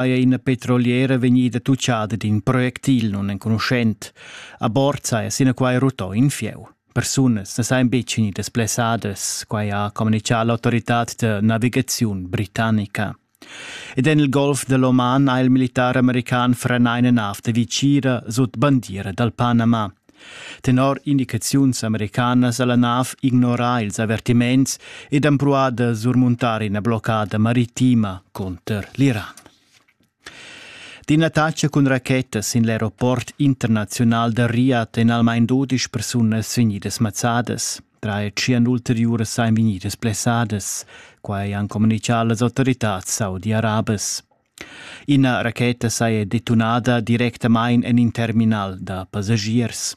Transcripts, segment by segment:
haja ina petroliera vegnida tucciada d'in projectil nunenconuschent. A bord saja sinaquai rutto in fieu. Persunas na sajan betg vegnidas blessadas, quai ha communitgà l'autoritad da navigaziun britannica. Ed en il golf dell'Oman ha il militar american frenà ina nav da vicira sut bandiera dal Panama. Tenor indicaziuns americanas ha la nav ignorà ils avertiments ed empruà da surmuntar ina bloccada maritima cunter l'Iran. D'ina attacca cun racheta sin l'aeroport internaziunal da Riyadh èn almain dudisch persunas vegnidas mazzadas. Drei tschien ulteriuras ein vegnidas blessadas. Quai han communitgà las autoritads saudi-arabas. Ina racheta saja detunada directamain en in terminal da passagiers.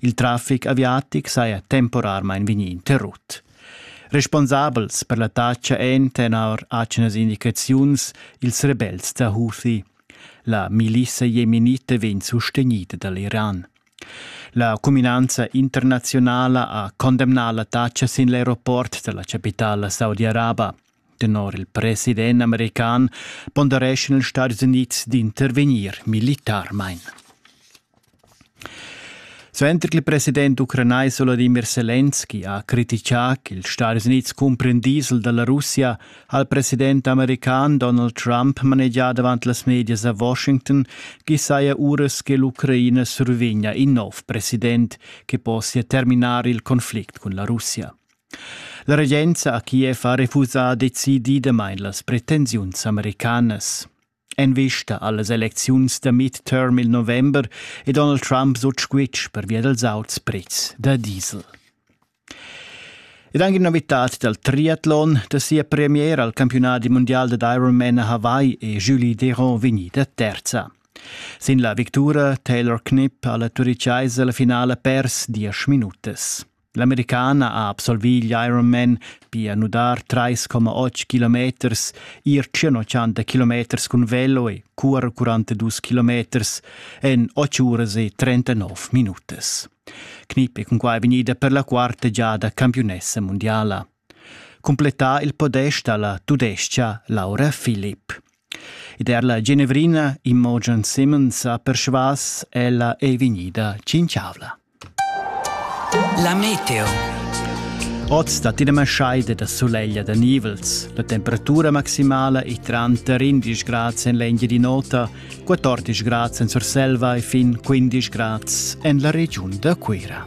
Il traffic aviatic saja temporarmain vegnì interrut. Responsabels per l'attacca èn tenor atgnas indicaziuns ils rebels da Houthi. La milissa jemenita vegn sustegnida da l'Iran. La cuminanza internaziunala ha condemnà l'attacca sin l'aeroport dalla capitala saudi-araba. Tenor il president american pondereschan ils Stati Unids d'intervegnir militarmain. Suenter che il president ucranais Volodymyr Zelensky ha critichà ch'ils Stati Unids cumpren diesel dalla Russia, ha il president american Donald Trump manegià davant las medias a Washington ch'i saja uras che l'Ucraina survegnia in nov president che possia terminar il conflict cun la Russia. La regenza a Kiev ha refusà decididamain las pretensiuns americanas. En vista a las elecziuns da midterm il november è Donald Trump sut squitsch pervia dals auts prezs da diesel. Ed anche una novità dal triathlon da sia premier al campionat mondial da Ironman a Hawaii è Julie Deron vegnida terza. Sin la victura Taylor Knipp ha la turichaisa la finala pers diesch minutas. L'Americana ha absolvì l'Ironman, pia nudar 3,8 kilometers, ir 180 kilometers cun velo e currer 42 kilometers en 8 uras e 39 minutas. Knip è cunquai vegnida per la quarta giada campiunessa mondiala. Completà il podest alla tudescha Laura Philipp. Ed er la Genevrina Imogen Simmons ha persvas, ella è vegnida tschintschavla. La meteo. Oz dat ina maschaida da suleglia da nivels. La temperatura maximala è tranter 11 grads en l'Engia di Nota, 14 grads en Surselva e fin 15 grads en la regiun da Cuira.